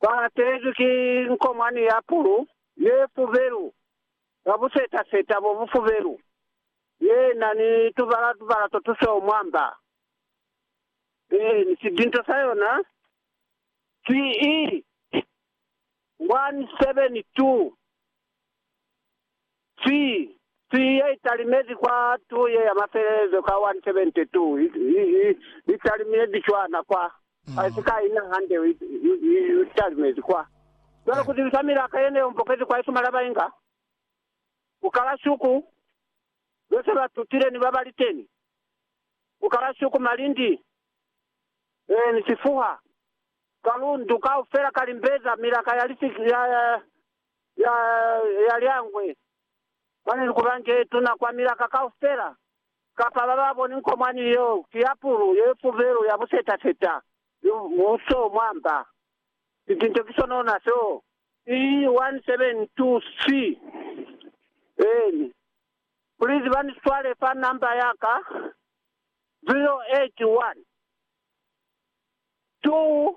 Ba latelezwi ki nkomwani ya pulu ye fubelu ka buseta-seta bo bufubelu, ye na ni tubala-tubala to tusweu mwa mba. Eeni, sidinto sa yona si i 172. Cwi! Cwi ye italimezi kwa tu ye ya mafelelezo ka 172 i talimezi cwana kwa, ka si ka ina hande i talimezi kwa. Cwale ku zibisa milaka ye ne yo mbokezi kwa isuma la ba inga, ku kala shuku ze se ba tutile ni ba ba li teni, ku kala shuku malindi, ee, ni sifuha, kalundu kaufela ka limbeza, milaka ya, ya ya lyangwe mwani likubanje lituna kwa milaka kaufela, kapa ba ba boni nko mwani yo ki ya pulu ye fubelu ya buseta-seta ni muso mwa mba. Sitinto ki sonona seo. E1723 en Please ba ni swale fa number ya ka 081 2.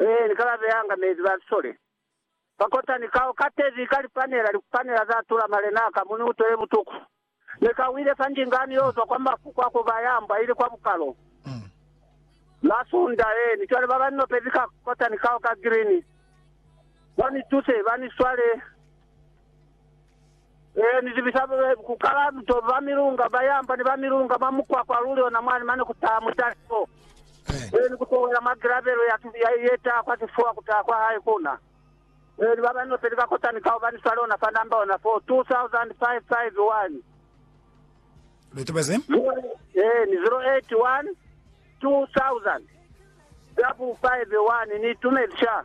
Ee, ni ka ba beanga mezi ba lisole. Ba kota ni kao ka tevi ka lipanela, likupanela za tula malenaa ka mu ni utwele butuku. Ne ka wile fa ndingani yo zwa kwa mafu kwa ku ba ya mbwa ili kwa bukalo. Masunda, ee, ni cwale ba ba ni nopezi ka kota ni kao ka grini. Ba ni tuse, ba ni swale. Ee, ni zibisa ku kala mitobo ba milunga ba yamba ni ba milunga mwa mukwakwa luli ona mwani mane ku taha mutaliso. Ee, ni ku towela mwa gilabelo ya tubi ya ye taha kwa sifuwa ku taha kwa hae ku na. Ee, ni ba ba nopeli ba kotani ka hubani swale ona fa namba ona foo, 2551. Lu tobezi. Ee, ni 081 2000 double five one. Ni itumezi sha.